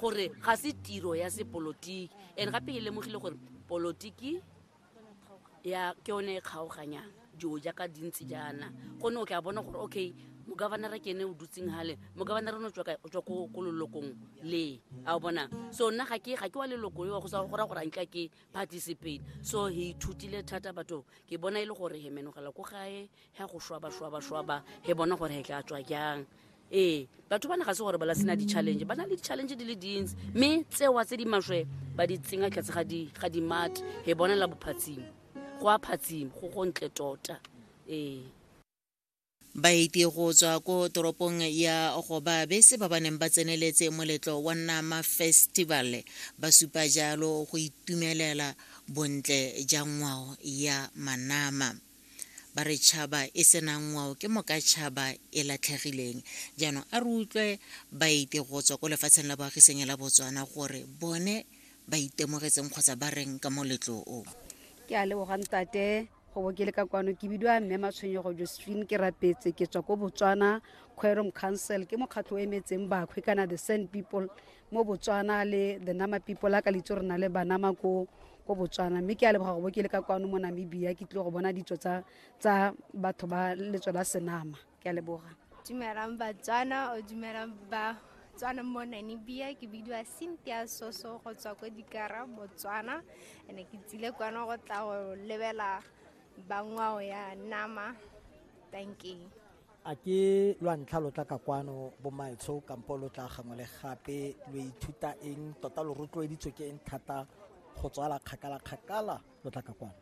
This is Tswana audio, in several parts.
gore ga se tiro ya sepolotiki and gape ke lemogile gore polotiki ya ke yone e kgaoganyang dilo jaaka dintsi jaana gone o tla bona gore okay mogavanara ke ene o dutseng gale mogavanara o ne o tswa kae? O tswa ko ko lelokong le a o bona so nna ga ke ga ke wa leloko eo go sa go ra gore a nka ke participate so he ithutile thata batho ke bona e le gore he menogela ko gae he go shwaba shwaba shwaba he bona gore he tla tswa jang ee batho ba ne ga se gore ba la sena di-challenge ba na le di-challenge di le dintsi mme tsewa tse di maswe ba di tsenya tlhatse ga dimate he bonela bophatsimo go a phatsimo go go ntle tota ee baeti go tswa ko toropong ya goba bese ba ba neng ba tseneletse moletlo wa nama festival ba supa jalo go itumelela bontle ja ngwao ya manama ba re tšhaba e senang ngwao ke moka tšhaba e latlhegileng jaanong a re utlwe baeti go tswa ko lefatsheng la boagiseng la botswana gore bone ba itemogetseng kgotsa ba reng ka moletlo o ke a lebogang tate go bo ke le ka kwano ke bidiwa mme matshwenyego josephine ke rapetse ke tswa ko botswana quorum council ke mokgatlho o emetseng bakhwe kana the sand people mo botswana le the nama people ka litso re na le banama ko ko botswana mme ke a leboga go bo ke le ka kwano mo namibia ke tlile go bona ditso tsa tsa batho ba letso la senama ke a leboga dumelang batswana o dumelang ba tswana mo namibia ke bidiwa cynthia soso go tswa ko dikara botswana ene ke tsile kwano go tla go lebela bangwao ya nama thank you a ke lwa ntlha lo tla ka kwano bomaetsho kampo lo tla gangwe le gape lo ithuta eng tota lo rotloeditswe ke eng thata go tswala kgakala kgakala lo tla ka kwano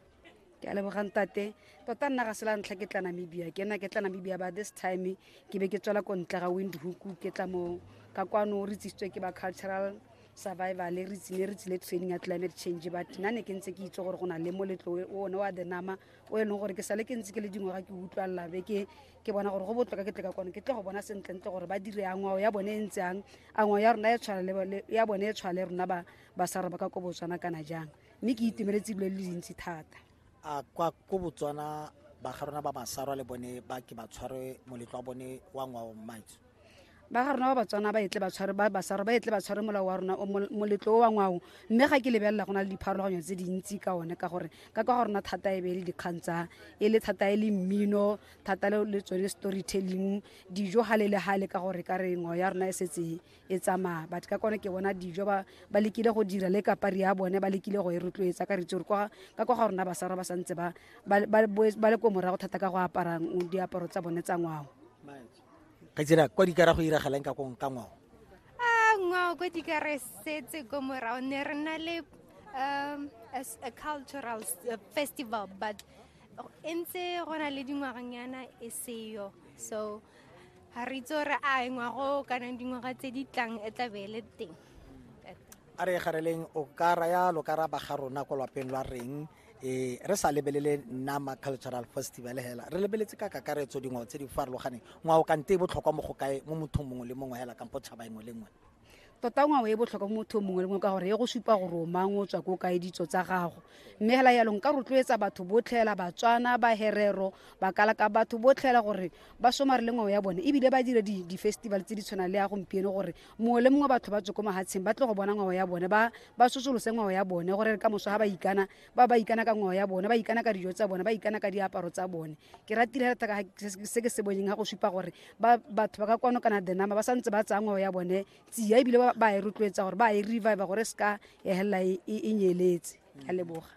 ke a lebogang tate tota nna ga sela ntlha ke tla namibia ke nna ke tla namibia ba this time ke be ke tswela ko ntle ga windhoek ke tla mo ka kwano re tsisitswe ke ba cultural survival re tsile re tsile training ya climate change but nna ne ke ntse ke itse gore go na le moletlo one wa the nama o e leng gore ke sale ke ntse ke le dingwaga ke utlwalela be ke ke bona gore go botlhoka ke tleka kone ke tle go bona sentlentle gore ba dire ya ngwao ya bone e ntse yang a ngwao ya rona e tshwana ya bone e tshwana le rona ba ba sa re ba ka ko botswana kana jang mme ke itemeletse ebile le dintsi thata a kwa ko botswana ba ga rona ba masarwa le bone ba ke ba tshware moletlo wa bone wa ngwao maitso ba ga rona ba batswana ba etle ba tshware ba basaro ba etle ba tshware molao wa rona o mol- moletlo o wa ngwao mme ga ke lebelela go na le dipharologanyo tse dintsi ka one ka gore ka kwa ga rona thata e be e le dikgang tsa e le thata e le mmino thata le le tsone storytelling dijo gale le gale ka gore ka re ngwao ya rona e setse e tsamaya but ka kone ke bona dijo ba ba lekile go dira le kapari ya bone ba lekile go e rotloetsa ka re itse gore kwa ka kwa ga rona basara ba santse ba ba- ba boe- ba le ko morago thata ka go apara mm, diaparo tsa bone tsa ngwao Manje. ga tsira kwa dikara go iragalang ka kong ka ngwao a ah, ngwao kwa dikara setse ko morao ne re na le um as a cultural uh, festival but e ntse go na le dingwaganyana e seyo so ga re itse gore a ngwago kana dingwaga tse di tlang e tla be e le teng a re gareleng o ka raya lo ka raba ga rona kwa lwapeng lwa reng e re sa lebelele nama cultural festival hela re lebeletse ka kakaretso dingwao tse di farologaneng ngwao kante e botlhokwa mo go kae mo mothong mongwe le mongwe hela kampo tšhaba engwe le ngwe tota ngwao e botlhokwa mo mothong mongwe le mongwe ka gore e go supa gore o mang o tswa ko kae ditso tsa gago mme hela yalo nka rotloetsa batho botlhela batswana baherero bakalaka batho botlhela gore ba somare le ngwao ya bone ebile ba dire di-festival tse di tshwanang le ya gompieno gore mongwe le mongwe batho ba tswe ko mahatsheng ba tle go bona ngwao ya bone ba ba sosolose ngwao ya bone gore ka moso ga ba ikana ba ba ikana ka ngwao ya bone ba ikana ka dijo tsa bone ba ikana ka diaparo tsa bone ke ratile thata ka se ke se boneng ga go supa gore ba batho ba ka kwano kana the number ba santse ba tsaya ngwao ya bone tsia ebile ba e rotloetsa gore ba e revive gore se ka ya helela e, e, e nyeletse a leboga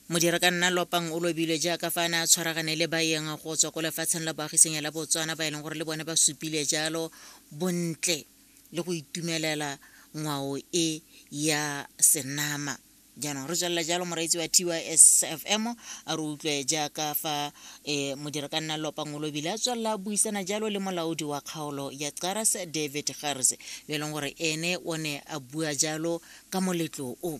Modirakanna Lopang o lobilwe jaaka fa a ne a tshwaragane le baeng go tswa ko lefatsheng la boagisenya la Botswana ba e leng gore le bone ba supile jalo bontle le go itumelela ngwao e ya senama jaanong re tswelela jalo moreetsi wa tysfm a re utlwe jaaka fa e modirakanna lopang o lobile a tswelela buisana jalo le molaodi wa kgaolo ya caras david garse yo e leng gore ene o ne a bua jalo ka moletlo o